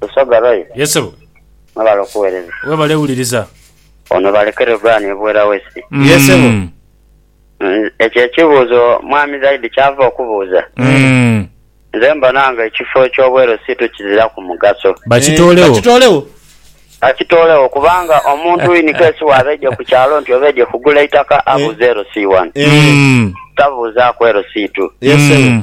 Lusoga Roy. Yes sebo. Mwebale okuwereza. Webale wuliriza. Ono balekere Uganda e Buwera West. Yes sebo. Ekyo ekibuuzo mwami Zaidi kyava okubuuza, nze mbona nga ekifo eky'obweru siitu kiziraku mugaso. Bakitoolewo. Bakitoolewo. Bakitoolewo kubanga omuntu in case waaba aidye ku kyalo nti oba aidye kugula eitaka abuuze LC one. Tabuuzaaku LC two. Yes sebo.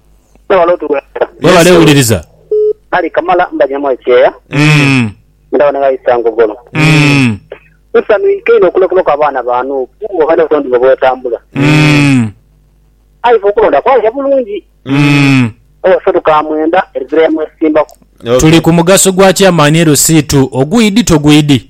Webale otuwereza. Webale wuliriza. Ali kamala mbanyamu ekyeya ndaba ne bayisa ngogolo. Nsanhu inho inho okulekulwaku abaana ba Nuupu oba ne butondibwe bwetambula. Aye ife okulonda kwaija bulungi. Oba fe tukamwenda ezira yamwesimbaku. Tuli ku mugaso gwa Chairman LC2 ogwidi togwidi.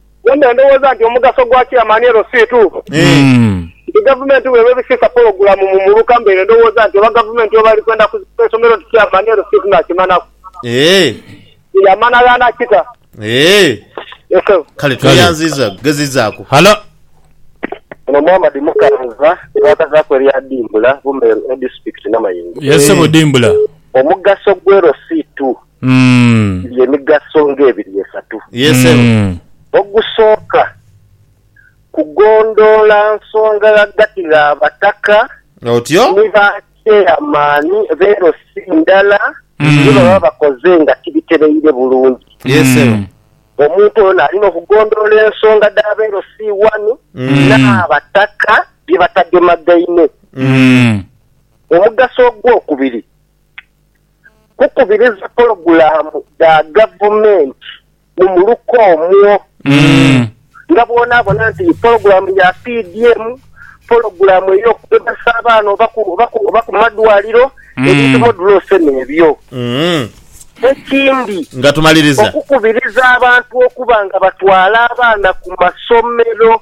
Bwe mba ndowooza nti omugaso gwa kira mani elo si tuufu. Nti gavumenti bweba ebisiisa pologulamu mu muluka mbaire ndowooza nti oba gavumenti oba eri kwenda kuzimba isomero nti kira mani elo si tunakimanaku. Ye yamana ghaana kita. Ye Sebo. Kale tweyanziza kugezizaaku. Halo. Ono Muhammad Mukanza bwakazaaku erya Dimbula, Bumeru, Edisitikiti Namayingo. Ye Sebo Dimbula. Omugaso gw'elo si tu. Mm. Giri emigaso ng'ebiri esatu. Yee ssebo. Mm. Ogusooka, kugondoola nsonga ghagati gh'abataka Otyo. ni ba kyeeyamaani be LC ndala Mm. bye baba bakoze nga tibitereire bulungi. Yee ssebo. Mm. Omuntu ono alina okugondoola ensonga dh'aba LC wani Mm. n'abataka bye batagemagaine. Mm. Omugaso ogw'okubiri, kukubiriza pologulaamu dha gavumenti mu muluka omwo. Nga bw'onaabona nti pologulaamu ya PDM, pologulaamu ey'okugezesa abaana oba ku, oba ku, oba ku madwaliro, ebintu modulose n'ebyo. Ekindi, Nga tumaliriza. okukubiriza abantu okuba nga batwala abaana ku masomero.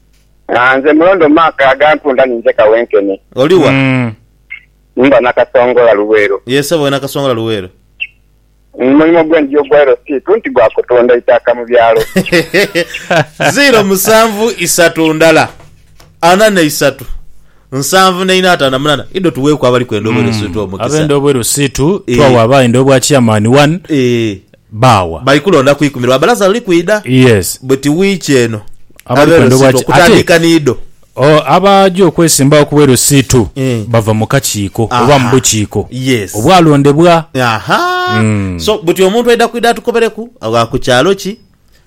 Aah nze Mulondo Mark agantunda ni nze kawenkene. Oli wa? Mm. Mba Nakasongola Luweero. Yee sebo we Nakasongola Luweero. Omulimo gwe ndya ogwa LC2 nti gwa kutunda itaaka mu byalo. Ziro musanvu isatu ndala ana na isatu nsanvu na ina atano na munana idho tuweeku abali kwenda obwerusitu omukisa. Abenda obwerusitu Eh. twawa abaenda obwa chairman one. Eeh. Baawa. Bali kulonda ku ikumi lwa balaza luli kwidha. Yes. Buti wiiki eno Abali abe kwendha Losiito obwaki- okutandiika ni ido. Oh, abaja okwesimbagho ku bwe Losiito Eh. bava mu kakiiko oba mu Aha. bukiiko Yes. obwalondebwa. Aha. So buti omuntu aidha kwidha atukobereku agha ku kyalo ki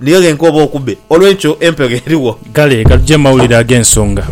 Niyo ghenka oba okube. Olw'ekyo empegho erigho. Kale ka tuje mu mawulire ag'ensonga.